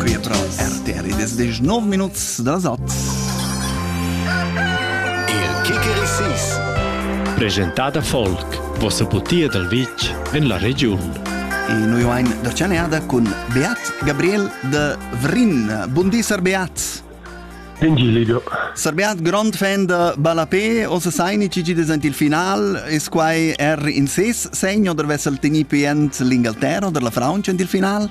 Qui pro RTR ed es desch nov minuts da sat. Il Kikerisis Presentada Folk, vossa putia dal vitg en la regiun. E noi vain da chaneada cun Beat Gabriel de Vrin. Bundi, Sir Beat. Ingilido. Sir Beat, grand fan de Balapé, ossa saini cigi desent il final, es quai er in ses segno, der vessel teni pient l'Ingalterra, der la Fraunce in il final?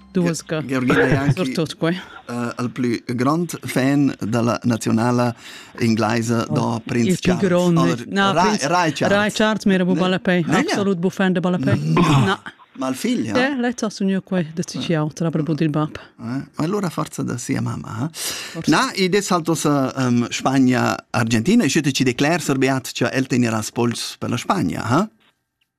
Surtut quai. al plü grand fan da la nazionala inglaisa da Prinz Charles. Na, Rai Charles m'era bu balapei. Absolut bu fan de balapei. Na. Ma il figlio? Eh, lei ha sogno qua da ciao, tra per il bab. Eh, ma allora forza da sia mamma. Na, e des saltos um, Spagna Argentina e schütte ci decler, Sir Beat, che el tenera spols per la Spagna, ha?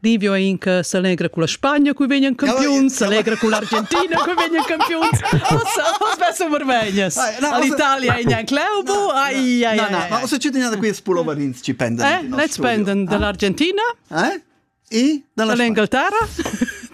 Livio è in che se allegra con la Spagna cui vegnan campiuns, se allegra con l'Argentina cui vegnan campiuns. Ossa, ossa sono vermegnas. All'Italia è in club. Ai ai. Na na, ma ossa cittadina da qui spulovarins ci pendan. Eh, ne spendan dall'Argentina. Eh? E dall'Inghilterra?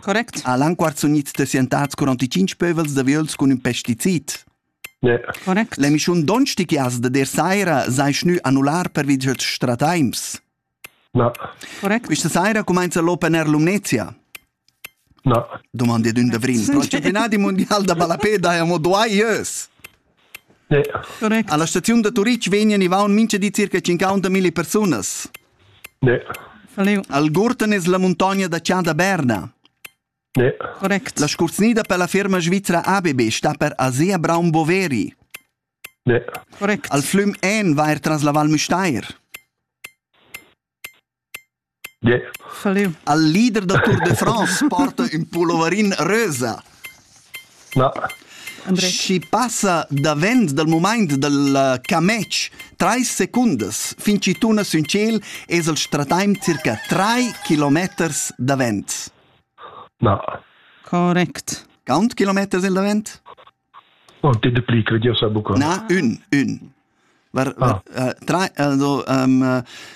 Correct. Ha l'anquart sunit desientats 45 pövels da viols cun ün pesticid. Correct. L'emischun Donstichias da der saira sai schnü annular pervi dad strataims. Na. Correct. Quista saira cumainza l'Open Air Lumnezia. Na. Domandi d'ün d'avril. Pro il campionat mondial da ballapè daja mo dua ieus. Correct. Alla staziun da Turitg vegnan i vaun mincha di circa 50.000 persunas. Algurtan es la muntogna da cha da Berna. Correct. La scurznida per la firma svizra ABB sta per Asea Braun Boveri. Correct. Al flüm En va er tras la Val Müstair. Al leader da Tour de France porta ün pulloverin rösa. Na. Schi passa davent dal mumaint dal camech trais secundas fin chi tuna sün tschel es el strataim circa trai kilometers davent. Na. Correct. Count kilometers il davent? No, te de pli, credio sa buca. Na, ün, ün. Var, var, ah. uh, tra, also, um,